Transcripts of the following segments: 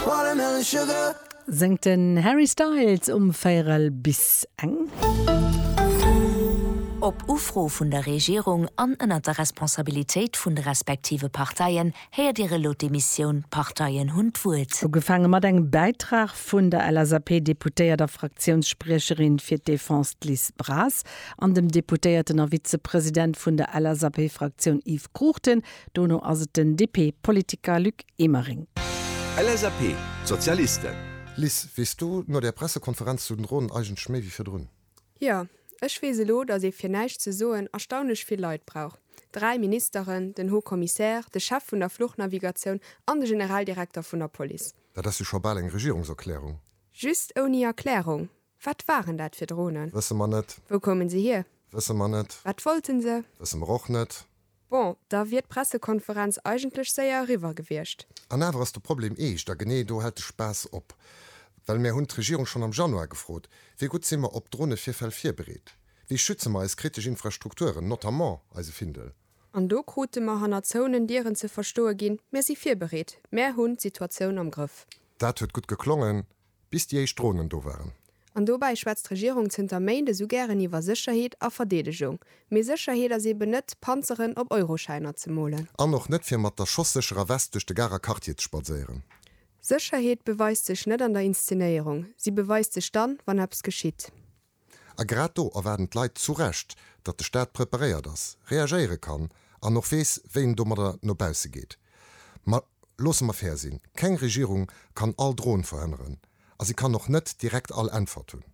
Watermelon sugar. Sengt den Harry Styles um véierel bis eng. Op Ufro vun der Regierung an ënnert der Responsabilitéit vun de respektive Parteien héiert Dir elo d'Emissioun D'Parteien hunn d'Wuert. Ugefaange mat engem Bäitrag vun der LSAP-Deputéiert a Fraktiounsspriecherin fir d'Defense Liz Braz an dem Deputéierten a Vizepresident vun der LSAP-Fraktioun Yves Cruchten, Dono ass et den DP-Politiker Luc Emering. LSAP, d'Sozialisten. Liz, weess du no der Pressekonferenz zu den Dronen eigentlech méi wéi virdrun? Jo, ech weess elo, datt ee fir näischt ze soen erstaunlech vill Leit brauch, dräi Ministeren, den Haut Commissaire, de Chef vun der Fluchnavigatioun an de Generaldirekter vun der Police. Dat ass jo scho bal eng Regierungserklärung. Just ouni Erklärung, Wat waren dat fir Dronen? Wësse mer net. Wou koumen se hier? Wësse mer net. Wat wollten se? Wësse mer och net. Bon, da wier d'Pressekonferenz eigentlech séier eriwwer gewiescht. An awer ass de Problem eescht, a genee do hält de Spaass op. Well mär hunn d'Regierung schonn am Januar gefrot, Wéi gutt si mer op Dronevirfäll virbereet? Wéi schütze mer eis kritesch Infrastrukturen, notamment eise Findel? An do krute mer hannert zouenen Dieren ze verstoe ginn, Mär si virbereet, mär hunn d'Situatioun am Grëff. Dat huet gutt geklongen, bis déi éischt Dronen do waren. An dobäi schwätzt d'Regierung zënter Méint esou gären iwwer Sécherheet a Verdeedegung. Mee Sécherheet ass eben net, Panzeren op Euroschäiner ze molen. An och net, fir mat der schosssécherer West duerch de Garer Quartier ze spadséieren. Sécherheet beweist sech net an der Inszenéierung, si beweist sech dann, wann eppes geschitt. A grad do erwaarden d'Leit zu Recht, datt de Staat preparéiert ass, reagéiere kann an och weess, wéi en domadder no bausse geet. Ma loosse mer fair sinn, keng Regierung kann all Droen verhënneren a si kann och net direkt all Äntwert hunn.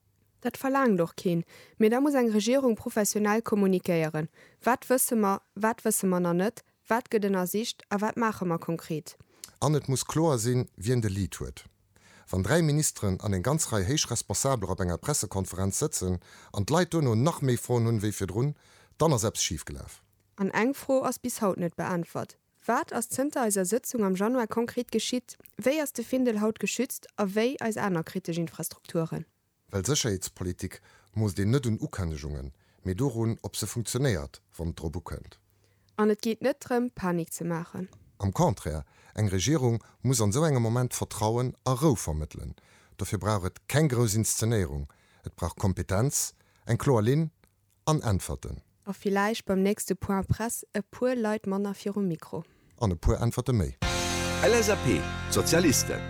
Dat verlaangt och keen. Mee da muss eng Regierung professionell kommunikéieren, wat wësse mer, wat wësse mer nach net, wat gëtt ënnersicht a wat maache mer konkret. An et muss kloer sinn, wien de Lead huet. Wann dräi Ministeren an eng ganz Rei héich Responsabeler op enger Pressekonferenz sëtzen an d'Leit duerno nach méi Froen hunn wéi virdrun, dann ass eppes schif gelaf. An eng Fro ass bis haut net beäntwert, Wat ass zënter eiser Sëtzung am Januar konkret geschitt? Wéi ass de Findel haut geschützt a wéi eis aner kritesch Infrastrukturen? Well Sécherheetspolitik moosst een net un Ukënnegungen, mee dorun, ob se funktionéiert, wann et drop ukënnt. An et geet net drëm, Panik ze maachen. Am Contraire, eng Regierung muss an esou engem Moment Vertrauen a Rou vermëttelen. Dofir brauch et keng grouss Inszenéierung, et brauch Kompetenz, eng kloer Linn An Äntwerten. A villäicht beim nächste Point Presse e puer Leit manner virum Mikro. An e puer Äntwerte méi. LSAP, d'Sozialisten.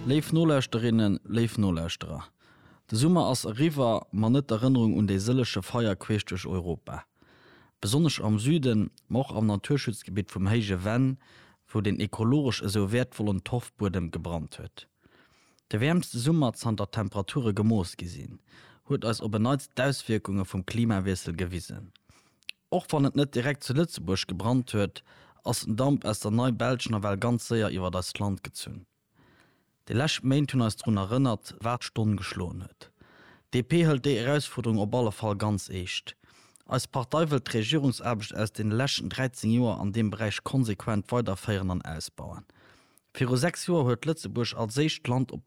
Léif Nolauschterinnen, léif Nolauschterer, de Summer ass eriwwer, ma net d'Erënnerung un déi sëlleche Feier queesch duerch Europa. Besonnesch am Süden, ma och am Naturschutzgebitt vum Héije Venn, wou den ekologesch esou wäertvollen Torfbuedem gebrannt huet. De wäermste Summer zanter d'Temperature gemooss gi sinn, huet eis op en Neits d'Auswierkunge vum Klimawiessel gewisen. Och wann et net direkt zu Lëtzebuerg gebrannt huet, ass den Damp aus der Nei-Belsch nawell ganz séier iwwert eist Land gezunn. Déi lescht Méint hunn eis drun erënnert, wat d'Stonn geschloen huet. D'DP hëlt déi Erausfuerderung op alle Fall ganz eescht. Eis Partei wëllt d'Regierungsaarbecht aus den leschten 13 Joer an deem Beräich konsequent weiderféieren an ausbauen. Viru sechs Joer huet Lëtzebuerg als éischt Land op